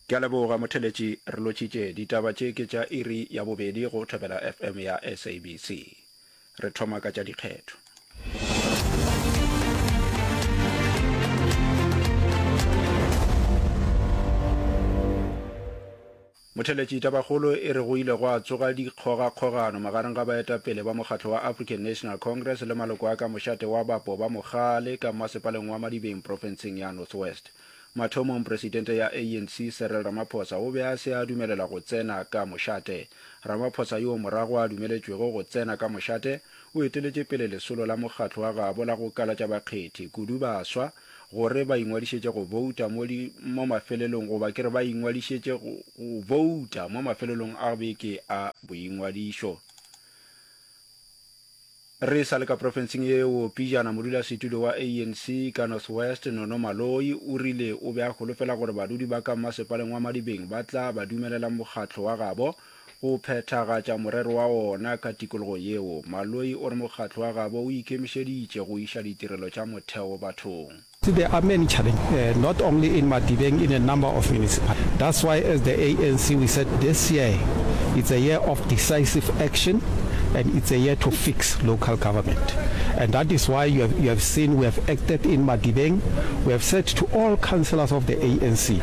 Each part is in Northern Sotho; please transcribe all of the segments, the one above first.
Ke a leboga motheletši, re lotšitše. Ditaba tše ke tša iri ya bobedi go Thobela FM ya SABC. Re thoma ka tša dikgetho. Motheletši tabakgolo e re go ile gwa tsoga dikgogakgogano magareng ga baetapele ba mokgatlo wa African National Congress le maloko a ka mošate wa bapo ba mogale ka mmasepaleng wa Madibeng profenseng ya North West. Mathomong presidente ya ANC Cyril Ramaphosa o be a se a dumelela go tsena ka mošate. Ramaphosa yoo morago a dumeletšwego go tsena ka mošate o eteletše pele lesolo la mokgatlo wa gabo la go kalatša bakgethi, kudu baswa, gore ba ingwadišetše go bouta mo di, mo mafelelong, goba ke re ba ingwadišetše go, go bouta mo mafelelong a beke a boingwadišo. Re sa le ka profenseng yeo, pijana modulasetulo wa ANC ka North West, Nono Maloyi, o rile o be a holofela gore badudi ba ka mmasepaleng wa Madibeng ba tla ba dumelela mokgatlo wa gabo Go phethagatša morero wa ona ka tikologo yeo, Maloi o re mokgatlo wa gabo o ikemišeditše go iša ditirelo tša motheo bathong. See there are many challenge eh, not only in Madibeng in a number of municipalities, that's why as the ANC we said this year it's a year of decisive action and it's a year to fix local government and that is why you have, you have seen we have acted in Madibeng, we have said to all councillors of the ANC,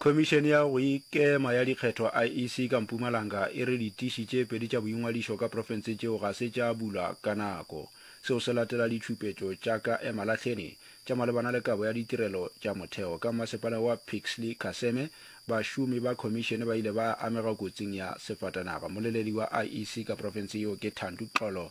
Khomišene ya go Ikema ya Dikgetho, IEC, ka Mpumalanga e re ditiši tše pedi tša boingwadišo ka profense tšeo ga se tša bulwa ka nako. Seo se latela ditšhupetšo tša ka emalahleni tša malebana le kabo ya ditirelo tša motheo. Ka mmasepala wa Pixley Kaseme, bašomi ba khomišene ba ile ba amega kotsing ya sefatanaga. Moleledi wa IEC ka profense yeo ke Thandu Xolo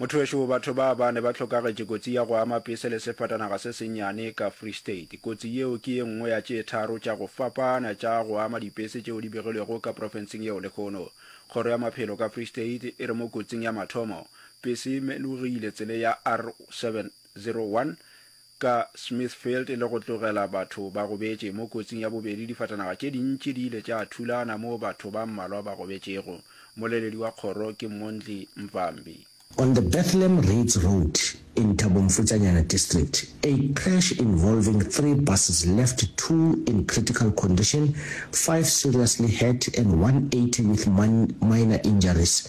Mothowešu, batho ba bane ba hlokagetše kotsi ya go ama pese le sefatanaga se sennyane ka Free State. Kotsi yeo ke ye nngwe ya tše tharo tša go fapana tša go ama dipese tšeo di begilwego ka profenseng yeo lehono. Kgoro ya Maphelo ka Free State e re mo kotsing ya mathomo, pese e melogile tsele ya R701 ka Smithfield le go tlogela batho ba gobetše mo kotsing ya bobedi, difatanaga tše dintši di ile tša thulana moo batho ba mmalwa ba gobetšego. Mmoleledi wa kgoro ke Mondli Mvambi. On the Bethlehem Reads Road in Thabo Mfutsanyana District, a crash involving three buses left two in critical condition, five seriously hurt and one eighty with minor injuries.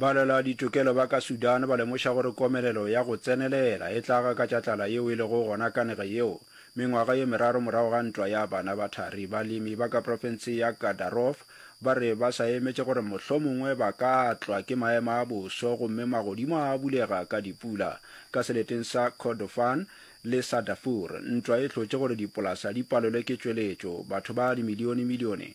Balwela ditokelo ba ka Sudan ba lemoša gore komelelo ya go tsenelela e tla gakatša tlala yeo e lego gona ka nage yeo. Mengwaga ye meraro morago ga ntwa ya bana ba thari, balemi ba ka profense ya Gadaroof ba re ba sa emetše gore mohlomongwe ba ka tlwa ke maemo a boso gomme magodimo a bulega ka dipula. Ka seleteng sa Kordofan le sa Darfur, ntwa e hlotše gore dipolasa di palelwe ke tšweletšo, batho ba dimilionemilione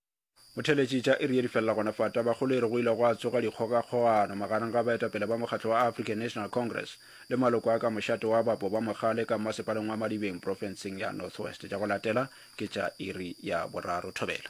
Go theletše tša iri ye di felela gona fa Tabakgolere go ile gwa tsoga dikgogakgogano magareng ga baetapele ba mokgatlo wa African National Congress le maloko a ka mošate wa bapo ba mogale ka mmasepaleng wa Madibeng profenseng ya North West. Tša go latela ke tša iri ya boraro. Thobela.